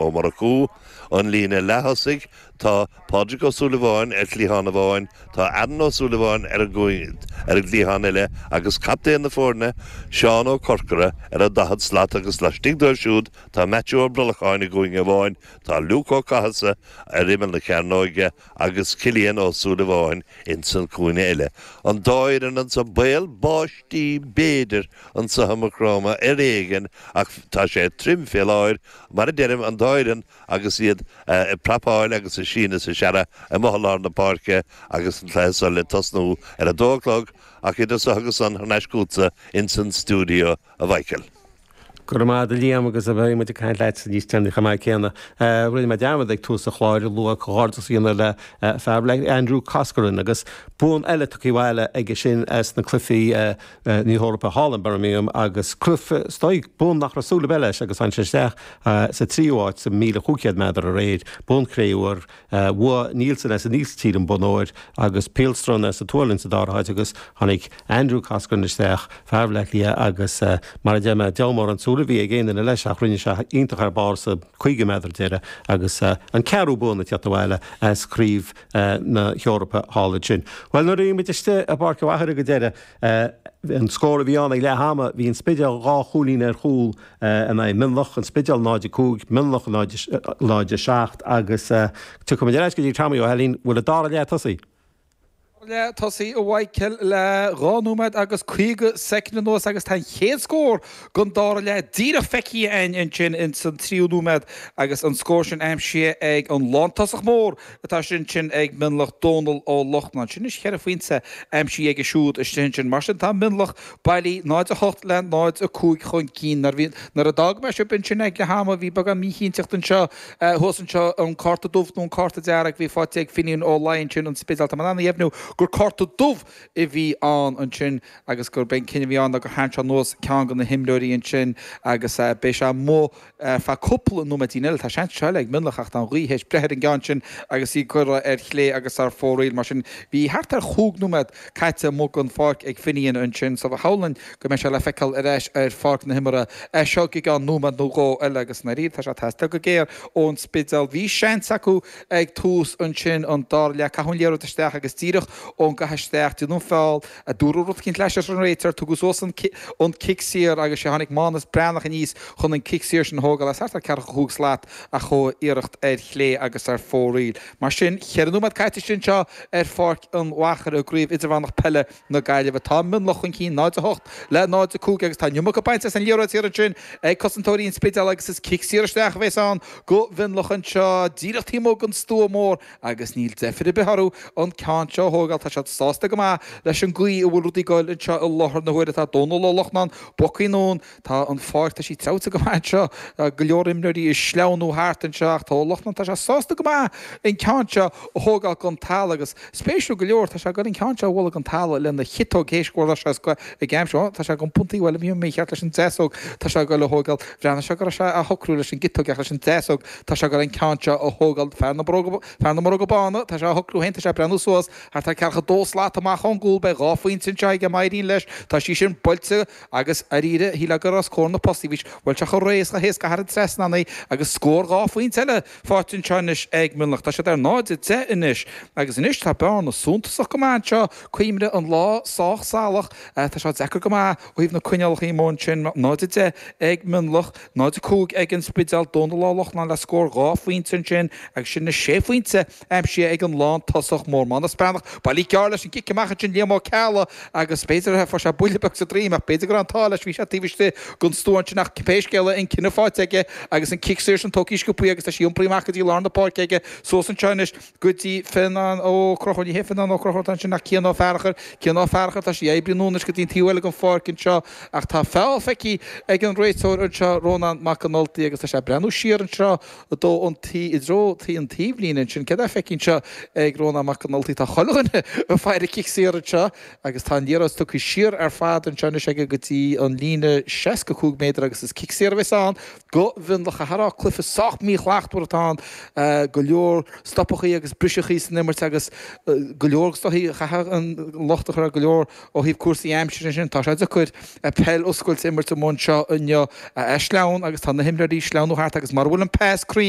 Ó Murchú, an líne leath-thosaigh, tá Pádraig Ó Súilleabháin ar chliathán amháin, tá Aaron Ó Súilleabháin ar an gcliathán eile agus captaen na foirne, Seán Ó Corcora, ar an daichead slat agus laistigh dóibh siúd tá Maitiú Ó Brolacháin i gcúinne amháin, tá Luke Ó Cathasaigh ar imeall na cearnóige agus Cillian Ó Súilleabháin ins an cúinne eile. An dá fhoireann anso, baol báistí b'fhéidir anso i Maigh Chromtha ar éigin ach tá sé tirim fé láthair Mar a deirim, an dá fhoireann agus iad ag prapáil agus ag síneadh is ag searradh amuigh i lár na páirce agus an cluiche seo le tosnú ar a dó a chlog, ach idir seo agus san, thar n-ais chughatsa insan stiúideo, a Mhaidhcil. Go raibh maith a'd a Liam agus beidh muid ag caint leatsa níos deireanaí chomh maith céanna. Rinne mé dearmad ag tús an chláir a lua comhghairdeas a dhéanamh le fear, le Andrew Coscoran agus bonn eile tugtha abhaile aige sin as na cluichí, Na hEorpa thall in Birmingham agus cruth stoic bonn nach raibh súil ar bith leis agus tháinig sé isteach sa tríú háit sa míle chúig chéad meadar aréir, bonn cré-umha, bhuaigh Nillessen as an Ísiltír an bonn óir agus Pihlström as an tSualainn sa dara háit agus tháinig Andrew Coscoran isteach, fear Bhleá Cliath agus mar a deir mé, deabhal mórán súil a bhí ag aon duine leis ach rinne sé iontach thar barr sa caoga meadar deireadh agus an ceathrú bonn ag tíocht abhaile as craobh na hEorpa thall ansin. Bhuel nuair a bhí muid istigh i bPáirc an Athar ag an deireadh, An scór a bhí ann ag leath ama, bhí an Spidéal dhá chúilín ar chúl in aghaidh Mionlach, an Spidéal 0-5, Mionlach 0-7 agus tiocfaidh muid ar ais go dtí Tommy Ó hAilín, bhfuil an dara leath tosaithe? Dara leath tosaithe a Mhaidhcil le dhá nóiméad agus caoga soicind anuas agus tá an chéad scór den dara leath díreach feicthe a'ainn ansin ins an tríú nóiméad agus an scór sin aimsithe ag an lántosach mór Atá ansin ag Mionlach Dónal Ó Lachtnáin. Sin anois cheithre phointe aimsithe aige siúd istigh ansin. Mar sin, tá Mionlach bailithe, 0 8 le 0 5 chun cinn. Nuair a d'fhág mé sibh ansin ag leath ama, bhí beagán míchinnteachta anseo, thuas anseo, an cárta dubh nó an cárta dearg a bhí faighte ag Finnian Ó Laoi ansin an Spidéal. Tá mé in ann a dheimhniú gur cárta dubh a bhí ann ansin agus gurb é an cinneadh a bhí ann ná gur tharraing sé anuas ceann de na himreoirí ansin agus beidh sé amuigh Ar feadh cúpla nóiméidín eile, tá seans seo eile ag Mionlach ach tá an ghaoth théis breith ar an gceann sin agus í curtha ar chlé agus ar fóraoil. Mar sin, bhí thart ar chúig nóiméad caite amuigh den pháirc ag Finnian ansin so shamhlóinn go mbeidh sé le feiceáil ar ais ar pháirc na himeartha as seo go ceann nóiméad nó dhó eile agus dáiríre, tá sé ag teastáil go géar ón Spidéal. Bhí seans acu ag tús ansin an dara leath, caitheadh an liathróid isteach agus díreach ón gcaitheamh isteach, déanadh feall, a dúradh rud éicint leis as an réiteoir. Tugadh suas an cic saor agus sea, tháinig Mánus Breathnach aníos chun an cic saor sin a thógáil as thart ar cheathracha cúig slat ach chuaigh a iarracht ar chlé agus ar fóraoil. Mar sin, ceithre nóiméad caite istigh anseo ar Pháirc an Mhachaire i gCraobh Idirmheánach Peile na Gaillimhe. Tá Mionlach chun cinn 0 8 le 0 5 agus tá an iomarca bainte as an liathróid thiar ansin ag cosantóirí an Spidéil agus is cic saor isteach a bheas ann go Mhionlach anseo díreach taobh amuigh den stua mór Agus níl deifir ar bith orthu an ceann seo a thógáil, tá siad sásta go maith leis an gcaoi a bhfuil rudaí ag goil anseo i láthair na huaire, tá Dónal Ó Lochnáin bogtha anonn, tá an pháirc, tá sí treabhta go maith anseo, tá go leor imreoirí ag sleamhnú thart anseo ach tá Ó Lochnáin, tá sé sásta go maith an ceann seo a thógáil den talamh agus, spéisiúil go leor, tá sé ag goil an ceann seo a bhualadh den talamh lena chiotóg théis go raibh sé ag scoith ag aimsiú, ó, tá sé ag iompú, bhuel, a bhí mé mícheart leis an deasóg, tá sé ag goil a thógáil, bhreathnaigh sé go raibh sé á shocrú leis an gciotóg ach leis an deasóg, Tá sé ag dul an ceann seo a thógáil fear na bróga, fear na mbróga bána, tá sé á shocrú féin, tá sé ag breathnú suas thart ar ceathracha dó slat amach ón gcúl, beidh dhá phointe anseo aige má éiríonn leis, tá sí sin buailte agus dháiríre shílfeá gur os comhair na postaí a bhí sé, bhuail sé chomh réidh is chomh héasca thar an trasnán é agus scór dhá phointe eile faighte anseo anois ag Mionlach, tá siad ar 0-10 anois agus anois tá bearna suntasach go maith anseo, cuimhnigh an lá sách salach, tá sé deacair go maith ó thaobh na coinníollacha, mar sin 0-10 ag Mionlach. 0-5 ag An Spidéal, Dónal Ó Lochnáin le scór dhá phointe ansin agus sin na sé phointe aimsithe ag an lántosach mór Mánus Breathnach bailithe gearr leis an gcic amach ansin Liam Ó Ceallaigh agus b'fhéidir a fuair sé buille beag sa droim ach b'fhéidir go raibh an t-ádh leis, bhí sé taobh istigh den stua ansin ach pé scéal é an cinneadh faighte aige agus an cic saor sin tógtha sciobtha agus tá sí iompraithe amach go dtí lár na páirce aige. Suas anseo anois. Go dtí Fionán Ó Conchúir, ní hé Fionán Ó Conchúir atá ansin ach Cian Ó Fearchair, Cian Ó Fearchair, tá sí ag oibriú anois go dtí an taobh eile den pháirc anseo ach tá feall feicthe ag an réiteoir anseo, Rónán Mac an Ultaigh agus tá sé ag breathnú siar anseo i dtreo an tí, i dtreo tí an taobhlíne ansin, céard atá feicthe anseo ag Rónán Mac an Ultaigh? Tá chuile dhuine ag faire cic saor anseo agus tá an liathróid tugtha siar ar fad anseo anois aige go dtí an líne 65 méadar agus is cic saor a bheas ann. Go Mhionlach, a Chárthaigh, cluiche sách míshlachtmhar atá ann, go leor stopachaí agus briseachaí san imirt agus go leor, is dóichí, chaithfeá an locht a chur ar go leor ó thaobh cúrsaí aimsire ansin. Tá sé deacair peil oscailte a imirt amuigh anseo inniu, tá sé sleamhain, agus tá na himreoirí ag sleamhnú thart agus mura bhfuil an pas cruinn,